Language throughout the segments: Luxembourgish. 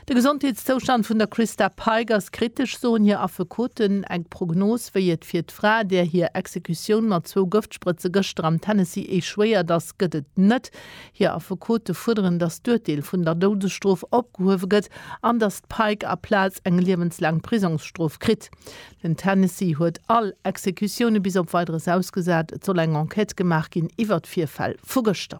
De Gesondheetszoustand vun der Christa Pike ass kritesch, soen hir Affekoten. Eng Prognos, wéi et fir d'Fra, där hir Exekutioun mat zwou Gëftsprëtze gëschter am Tennessee échouéiert ass, gëtt et net. Hir Affekote fuerderen, datt d'Urteel vun der Doudesstrof opgehuewe gëtt an datt d'Pike a Plaz eng liewenslaang Prisongsstrof kritt. Den Tennessee huet all Exekutioune bis op Weideres ausgesat. Et soll eng Enquête gemaach ginn iwwer d'Virfäll vu gëschter.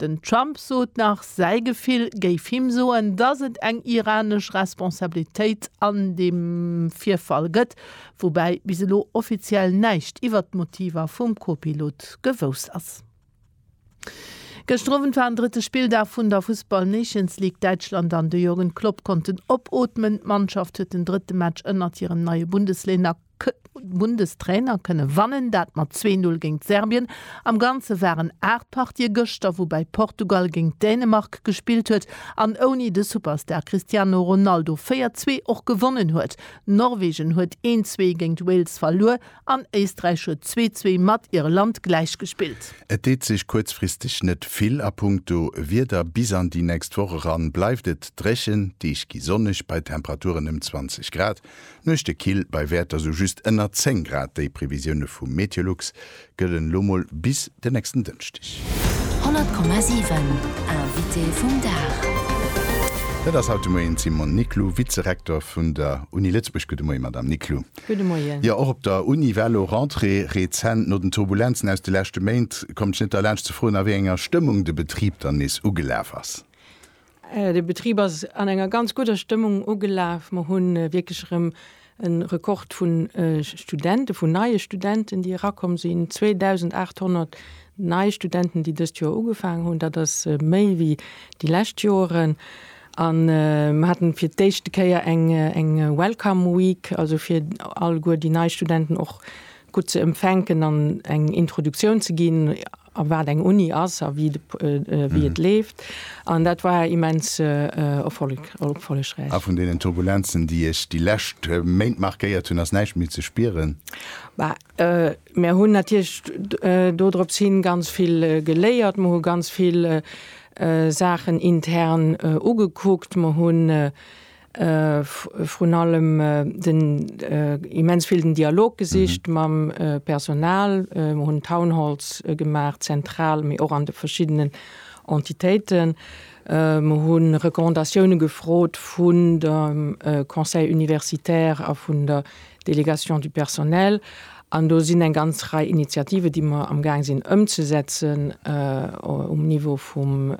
Den Trump sot nach, säi Gefill géif him soen, datt et eng iranesch Responsabilitéit an deem Virfall gëtt, woubäi bis elo offiziell näischt iwwert d'Motiver vum Co-Pilot gewosst ass. Gëschter Owend war den drëtte Spilldag vun der Fussball Nations League. Däitschland an de Jürgen Klopp konnten opootmen. D'Mannschaft huet den drëtte Match ënnert hirem neie Bundeslainer. Bundestrainer kënne wannen, dat mat zwee Null géint Serbien. Am Ganze waren aacht Partië gëschter, woubäi Portugal géint Dänemark gespillt huet an ouni de Superstar Cristiano Ronaldo véier zwee och gewonnen huet. Norwegen huet een zwee géint Wales verluer an Éisträich huet zwee zwee mat Irland gläichgespillt. Et deet sech kuerzfristeg net vill a punkto Wieder. Bis an déi nächst Woch eran bleift et dréchen, d'Deeg gi sonneg bei Temperaturen ëm 20 Grad. Nuechte kill bei Wäerter sou just ënner 10 Grad. Déi Previsioune vu Meteolux gëllen elo mol bis den nächsten Dënschdeg. 100,7 Invité vum Dag. Dat ass haut de Moien d'Simone Niclou, Vizerektor vun der Uni Lëtzebuerg. Gudde Moie Madamm Niclou. Gudde Moien. Jo, och op der Uni war elo Rentrée. Rezent, no den Turbulenzen aus de leschte Méint, konnt ech net derlaanscht ze froen, a wéi enger Stëmmung de Betrib dann nees ugelaf ass. De Betrib ass an enger ganz gudder Stëmmung ugelaf. Mer hu wierklech erëm e Rekord vu Studenten, vun neie Studenten, déi erakomm sinn, 2.800 nei Studenten, déi dëst Joer ugefaangen hunn. Dat ass méi wéi déi lescht Joren. A mer haten fir d'éischte Kéier eng Welcome Week, also fir alleguer déi nei Studenten och gutt ze empfänken an eng Introduktioun ze ginn. a wat eng Uni ass a wéi et leeft. An dat war immens erfollegräich. A vun deenen Turbulenzen, déi Iech déi lescht Méint markéiert hunn, ass näischt méi ze spieren? Bah, mir hunn natierlech do drops hin ganz vill geléiert. Mer hu ganz vill Saachen intern ugekuckt. Mer hunn. vrun allem den immens vill den Dialog gesicht mam Personal, mer hunn Townhalls gemaach, zentral, mee och an de verschiddenen Entitéiten, mer hu Recommandatioune gefrot vun dem Conseil universitaire a vun der Délégation du personnel, an do sinn eng ganz Rei Initiativen, déi mer amgaang sinn ëmzesetzen um Niveau vum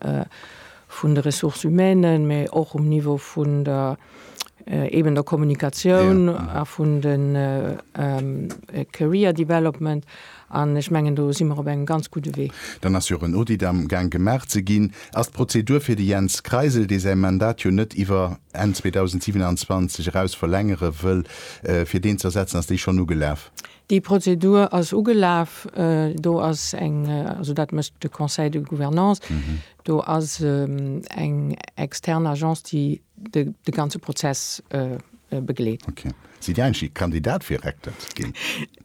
vun de Ressources humaines, mä och um Niveau vun der eben der Kommunikatioun a vun de Career Development. An ech mengen, do si mer op engem ganz gudde Wee. Dann ass jo och en Audit am Gaang gemaach ze ginn. Ass d'Prozedur fir de Jens Kreisel, dee säi Mandat jo net iwwer Enn 2027 eraus verlängere wëll, fir deen z'ersetzen, ass déi schonn ugelaf? Déi Prozedur ass ugelaf. Do ass eng, also dat mécht de Conseil de Gouvernance, Do ass eng extern Agence, déi de ganze Prozess begleet. Ok. Sidd Dir eigentlech Kandidat fir Rektor ze ginn?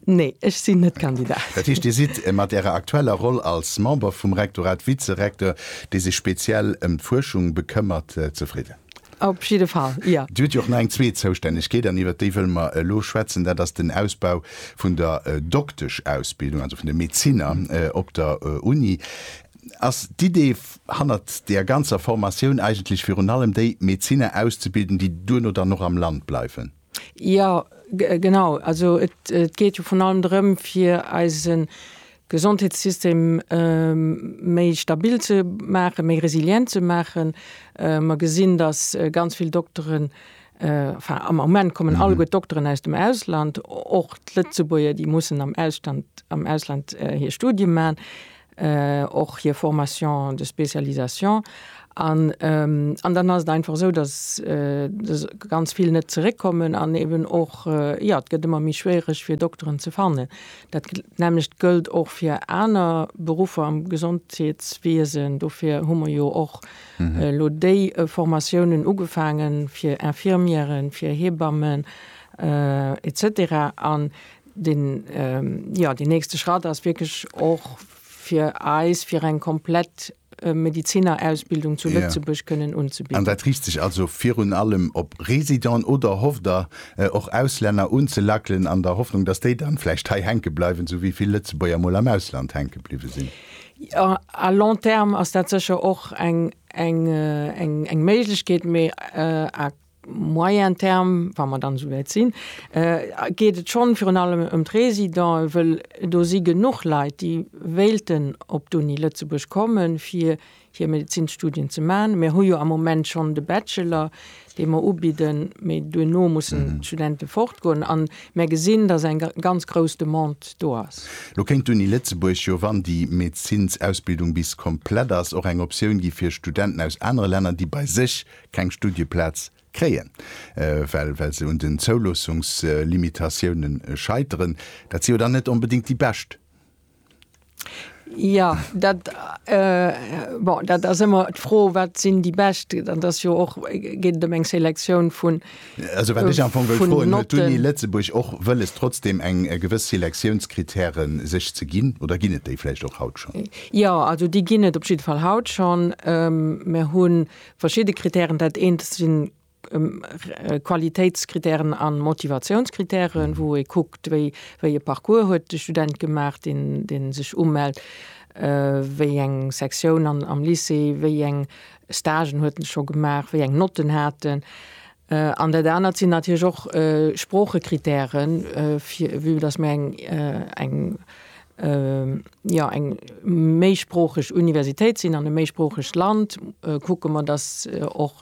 Nee, ech sinn net Kandidat. Dat heescht, Dir sidd mat Ärer aktueller Roll als Member vum Rektorat, Vizerektor, dee sech speziell ëm d'Fuerschung bekëmmert, zefridden? Op jidde Fall, jo. Dir hutt jo och nach eng zweet Zoustännegkeet, an iwwer déi wëlle mer elo schwätzen, dat ass den Ausbau vun der Doktesch-Ausbildung, also vun de Medezinner op der Uni. Ass d'Idee hannert deer ganzer Formatioun eigentlech virun allem déi, Medzinner auszebilden, déi duerno dann och am Land bleiwen? Jo, genau. Also et geet jo vrun allem drëm, fir eise Gesondheetssystem méi stabil ze maachen, méi resilient ze maachen. Mer gesinn, datt ganz vill Dokteren, enfin am Moment kommen alleguer d'Dokteren aus dem Ausland, och d'Lëtzebuerger, déi mussen am Ausland hir Studie maachen. och hir Formation de spécialisation an an dann ass et einfach esou, dass ganz vill net zeréckkommen an eben och, jo, et gëtt ëmmer méi schwiereg fir Dokteren ze fannen. Dat nämmlecht gëllt och fir aner Beruffer am Gesondheetswiesen. Dofir hu mer jo och elo déi Formatiounen ugefaangen fir Infirmièren, fir Hebammen et cetera an Deen, jo, deen nächste Schratt ass wierklech och fir eis, fir eng komplett Medizinerausbildung zu Lëtzebuerg kënnen unzebieden. An dat riicht sech also virun allem op Residenten oder hofft Der och Auslänner unzelackelen, an der Hoffnung, dass déi dann vläicht hei hänke bleiwen, sou wéi vill Lëtzebuerger mol am Ausland hänke bliwwe sinn? Jo, à long terme ass dat sécher och eng Méiglechkeet, mee à Moyen terme, wa mer dann esou wäit sinn, geet et schonn virun allem ëm d'Résidenten, wëll do si genuch Leit, déi wéilten op d'Uni Lëtzebuerg kommen, fir hir Medezinsstudien ze maachen. Mir hu jo am Moment schonn de Bachelor, dee mer ubidden, mee duerno mussen d'Studente fortgoen. A mir gesinn, dass eng ganz grouss Demande do ass. Lo kéint d'Uni Lëtzebuerg jo, wann déi Medezinsausbildung bis komplett ass, och eng Optioun gi fir Studenten aus anere Länner, déi bei sech keng Studieplaz kréien, well well se un den Zouloossungslimitatioune scheiteren. Dat si jo dann net onbedéngt déi bescht. Jo, dat, bon, dat ass ëmmer d'Fro, wat sinn déi bescht? Dat ass jo och, geet ëm eng Selektioun vun Notten. Also wat ech am Fong wëll froen, huet d'Uni Lëtzebuerg och wëlles trotzdem eng gewëss Selektiounskrittäre sech ze ginn oder ginn et déi vläicht och haut schonn? Jo, also déi ginn et op jidde Fall haut schonn. Mir hu Verschidde Kritären, dat eent si Qualitéitskriterien a Motivationskritären, wou ee kuckt, wéi e Parcours huet de Student gemaach, dee sech umellt, wéi eng Sektioun am Lycée, wéi eng Stagen huet en scho gemaach, wéi eng Notten hat en. An dat anert sinn natierlech och Sproochekritären, vue dass mir eng, jo, eng méisproocheg Universitéit sinn an e méisproochegt Land, kucke mer, dass och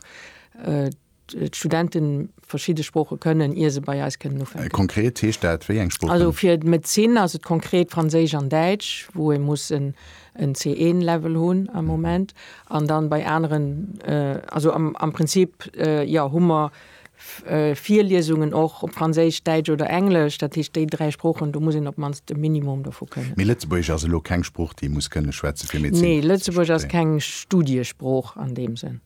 d'Studente verschidde Sprooche kënnen, ier se bei eis kënnen ufänken. Konkret heescht dat wéi eng Sproochen? Also fir d'Médecine ass et konkret Franséisch an Däitsch, wou ee muss en en C1 Level hunn am Moment an dann bei aneren also am Prinzip jo hu mer Virliesungen och op Franséisch, Däitsch oder Englesch, dat heescht déi dräi Sproochen, do muss een op d'mannst e Minimum dovu kënnen. Mee Lëtzebuergesch ass elo keng Sprooch déi ee muss kënne schwätze fir Medezin ze studéieren? Nee, Lëtzebuergesch ass keng Studiesprooch an deem Sënn.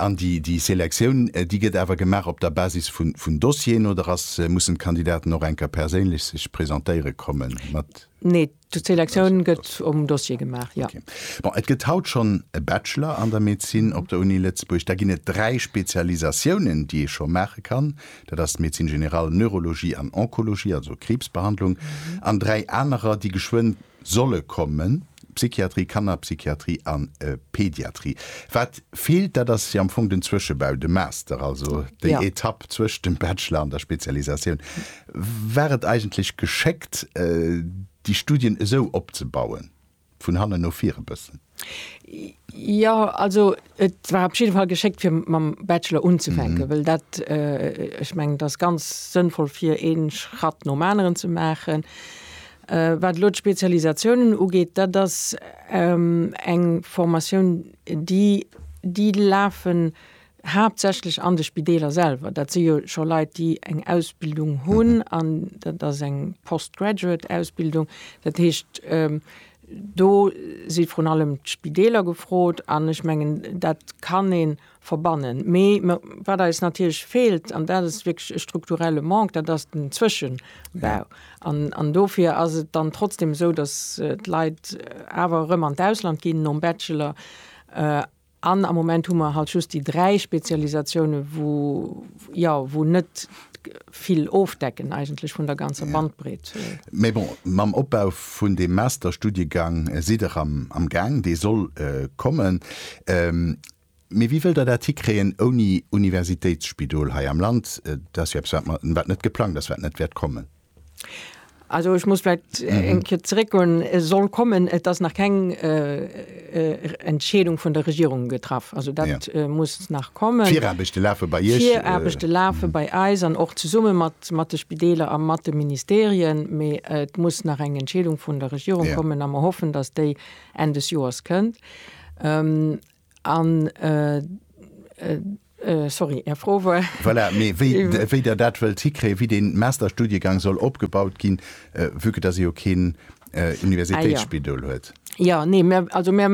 An déi Selektioun déi gëtt awer gemaach op der Basis vun Dossieren oder ass mussen d'Kandidaten och enker perséinlech sech presentéiere kommen mat? Nee, D'Selektioun gëtt um Dossier gemaach, jo. Bon, et gëtt haut schonn e Bachelor an der Medezin op der Uni Lëtzebuerg. Da ginn et dräi Spezialisatiounen, déi ee scho maache kann. Dat ass d'Médecine générale, Neurologie an Onkologie, also Kriibsbehandlung, an dräi anerer, déi geschwënn solle kommen, Psychiatrie, Kannerpsychiatrie an Pediatrie. Wat feelt, dat ass jo am Fong den Zwëschebau, de Master, also déi Etapp zwëscht dem Bachelor an der Spezialisatioun. War et eigentlech geschéckt, déi Studien esou opzebauen, vun hannen no vir e bëssen? Jo, also et war op jidde Fall geschéckt, fir mam Bachelor unzefänken, wëll dat, ech mengen, dat ass ganz sënnvoll, fir ee Schratt nom aneren ze maachen. Wat elo d'Spezialisatiounen ugeet, dat ass eng Formatioun, déi, déi lafen Haaptsächlech an de Spideeler selwer. Dat si jo scho Leit, déi eng Ausbildung hunn an dat ass eng Postgraduate-Ausbildung. Dat heescht, do si vrun allem d'Spideeler gefrot an ech mengen, dat kann ee verbannen. Mee wat eis natierlech feelt, an dat ass wierklech e strukturelle Manque, dat ass den Zwëschebau. An dofir ass et dann trotzdem esou, datt d'Leit awer erëm an d'Ausland ginn nom Bachelor. An am Moment hu mer halt just déi dräi Spezialisatiounen, wou, jo, wou net vill ofdecken eigentlech vun der ganzer Bandbreet. Mee bon, mam Opbau vun deem Masterstudiegang sidd Der am Gaang, dee soll kommen. Mee wéi wëllt Der dat hikréien ouni Universitéitsspidol hei am Land? Dat ass jo eppes, wat net geplangt ass, wat net wäert kommen. Also ech muss vläicht eng Kéier zeréckgoen. E soll kommen, et ass nach keng Entscheedung vun der Regierung getraff. Also dat muss nach kommen. D'Viraarbechte lafe bei Iech? D'Viraarbechte lafe bei eis an och zesumme mat de Spideeler a mat de Ministerien. Mee et muss nach eng Entscheedung vun der Regierung kommen a mer hoffen, datt déi Enn des Joers kënnt. An, sorry, Är Fro war? Voilà, mee wéi Der dat wëllt hikréien, wéi dee Masterstudiegang soll opgebaut ginn, vue que dass ee jo keen Universitéitsspidol huet. Jo, nee, mir, also mir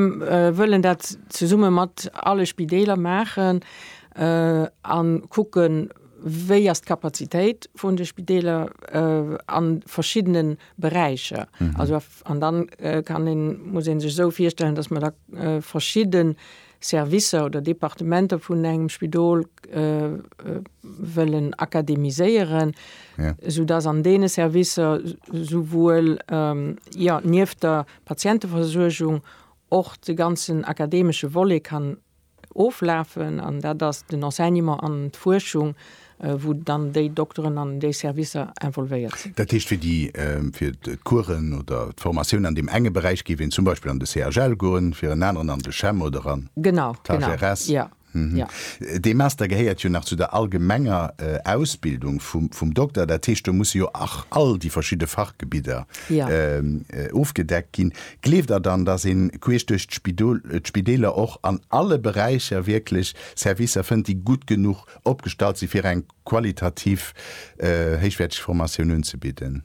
wëllen dat zesumme mat alle Spideeler maachen a kucken, wéi ass d'Kapazitéit vun de Spideeler a verschiddene Beräicher, also An dann kann een, muss een sech esou virstellen, dass mer da verschidde Servicer oder Departementer vun engem Spidol wëllen akademiséieren, esou dass an deene Servicer souwuel, jo, nieft der Patienteversuergung och de ganzen akademesche Volet kann Oflafen, an dat ass den Enseignement an d'Fuerschung, wou dann déi Dokteren an déi Servicer involvéiert sinn. Dat heescht, fir d'Coursen oder d'Formatiounen an deem enge Beräich géif een zum Beispill an de CHL goen, fir en aneren an de CHEM oder an d'HRS. Dee Master gehéiert jo nach zu der allgemenger Ausbildung vum Dokter. Dat heescht, do musse jo och all déi verschidde Fachgebidder ofgedeckt ginn. Gleeft der dann, dass een queesch duerch d'Spideeler och an alle Beräicher wierklech Servicer fënnt, déi gutt genuch opgestallt si fir eng qualitativ héichwäerteg Formatioun unzebidden?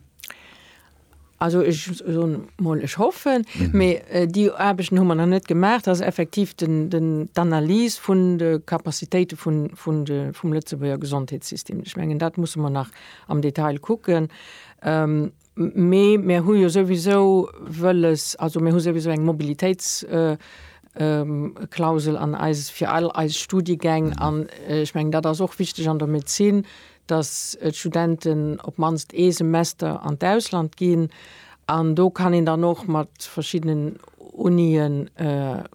Also ech soen emol, ech hoffen, mee déi Aarbechten hu mer nach net gemaach, dass effektiv d'Analys vun de Capacitéite vum Lëtzebuerger Gesondheetssystem, ech mengen dat musse mer nach am Detail kucken, Mee mir hu jo souwisou wëlles, also mir hu souwisou eng Mobilitéitsklausel an eis, fir all eis Studiegäng. An ech mengen, dat ass och wichteg an der Medezin, dass d'Studenten op d'mannst ee Semester an d'Ausland ginn. An do kann een dann och mat verschiddenen Unië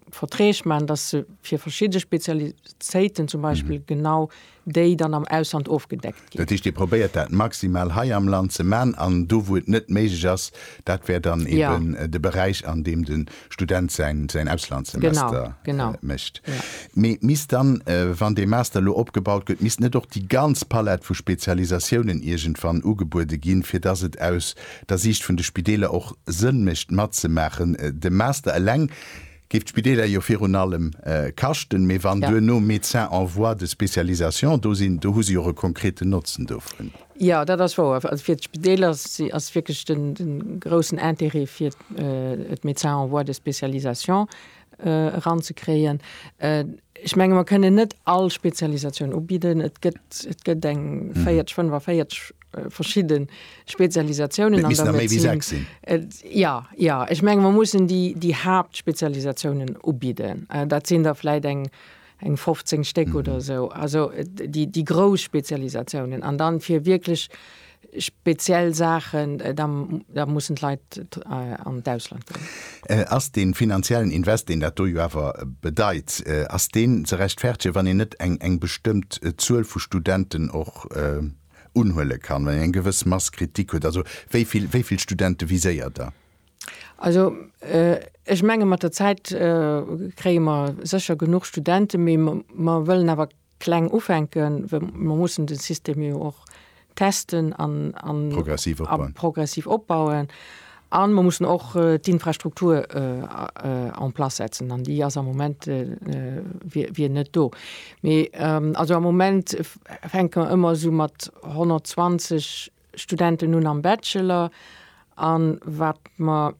Verträg maachen, dass se fir verschidde Spezialitéiten zum Beispill genau déi dann am Ausland ofgedeckt ginn. Dat heescht, Dir probéiert dat maximal hei am Land ze man an do wou et net méiglech ass, dat wär dann eben de Beräich an deem de Student säin Auslandssemester mécht. Mee misst dann, wann dee Master elo opgebaut gëtt, misst net och déi ganz Palette vu Spezialisatiounen iergendwann ugebuede ginn, fir datt et aus der Siicht vun de Spideeler och Sënn mécht matzemaachen? De Master eleng géif d'Spideeler jo virun allem kaschten, mee wann duerno Médecins en voie de spécialisation do sinn, do hu se jo och e konkreten Notzen dovun. Jo, dat ass wouer. Also fir d'Spideeler ass wierklech de groussen Intérêt fir d'Médecins en voie de spécialisation eranzekréien. Ech menge mer kënnen net all Spezialisatioun ubidden. Et gëtt eng 40, 45. verschidde Spezialisatiounen an der Medezin. Jo, jo. Ech menge mer mussen déi, déi Haaptspezialisatiounen ubidden. Dat sinn der vläit eng, eng 15 Stéck oder esou. Also déi, déi grouss Spezialisatiounen. An dann fir wierklech speziell Saachen, da, da mussen d'Leit an d'Ausland goen. Ass dee finanziellen Invest, deen dat do jo awer bedeit, ass deen ze rechtfertegen, wann een net eng, eng bestëmmt Zuel vu Studenten och, unhuele kann, wann een eng gewëss Mass Kritik huet? Also wéi vill, wéi vill Studente viséiert Der? Also ech menge mat der Zäit kréie mer sécher genuch Studenten, mee mer wëllen awer kleng ufänken, well mer mussen de System jo och testen a progressiv opbauen. A mer mussen och d'Infrastruktur en place setzen, an déi ass am Moment wier net do. Mee also am Moment fänke mer ëmmer esou mat 120 Studenten un am Bachelor. A wat mer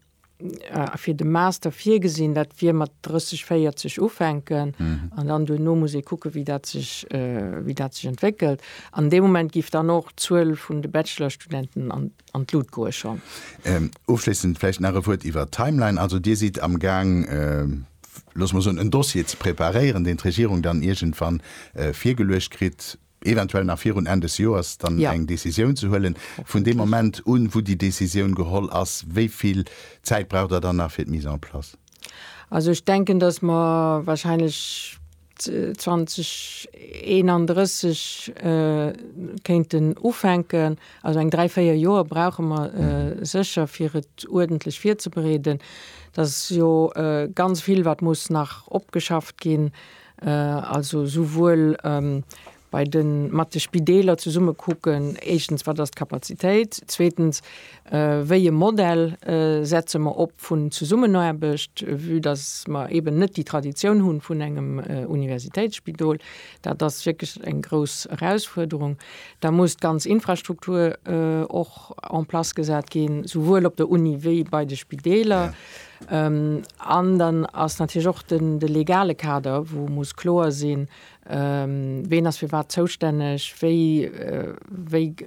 fir de Master virgesinn, dat wier mat 30, 40 ufänken. An dann duerno muss ee kucke wéi dat sech, wéi dat sech entwéckelt. An dee Moment géif dann och d'Zuel vun de Bachelorstudenten an. an d'Lut goe schonn. Ofschléissend vläicht nach e Wuert iwwert d'Timeline. Also Dir sidd am Gaang, loosse mer soen, en Dossier ze preparéieren, deen d'Regierung dann iergendwann virgeluecht kritt, eventuell nach virun Enn des Joers, dann eng Decisioun ze huelen. Vun deem Moment un, wou déi Decisioun geholl ass, wéi vill Zäit braucht Der dann nach fir d'Mise en place? Also ech denken, dass mer wahrscheinlech. 2031 kéinten ufänken. Also eng dräi, véier Joer brauche mer sécher, fir et uerdentlech virzebereeden. Et ass jo ganz vill, wat muss nach opgeschafft ginn, also souwuel bei de mat de Spideeler zesumme kucken, éischtens wat ass d'Kapazitéit, zweetens wéi e Modell setze mer op vun Zesummenaarbecht, vue datt mer eeben net déi Traditioun hu vun engem Universitéitsspidol, dat ass wierklech eng grouss Erausfuerderung. Da muss d'ganz Infrastruktur och en place gesat ginn, souwuel op der Uni wéi bei de Spideeler. An dann ass natierlech och de legale Kader, wou muss kloer sinn, Ween ass fir wat zoustänneg? Wéi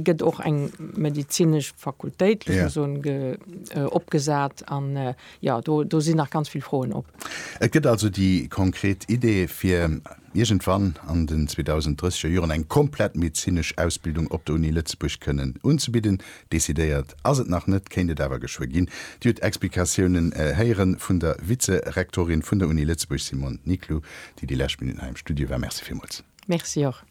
gëtt och eng medezinesch Fakultéit opgesat? An do sinn nach ganz vill Froen op. Et gëtt also déi konkret Idee, fir iergendwann an den 2030er Joren eng komplett medezinesch Ausbildung op der Uni Lëtzebuerg kënnen unzebidden. Decidéiert Ass et nach net, kéint et awer geschwë ginn. Dir hutt Explikatiounen héiere vun der Vize-Rektorin vun der Uni Lëtzebuerg, Simone Niclou, déi déi lescht Minutten hei am Studio war. Merci villmools. Merci och.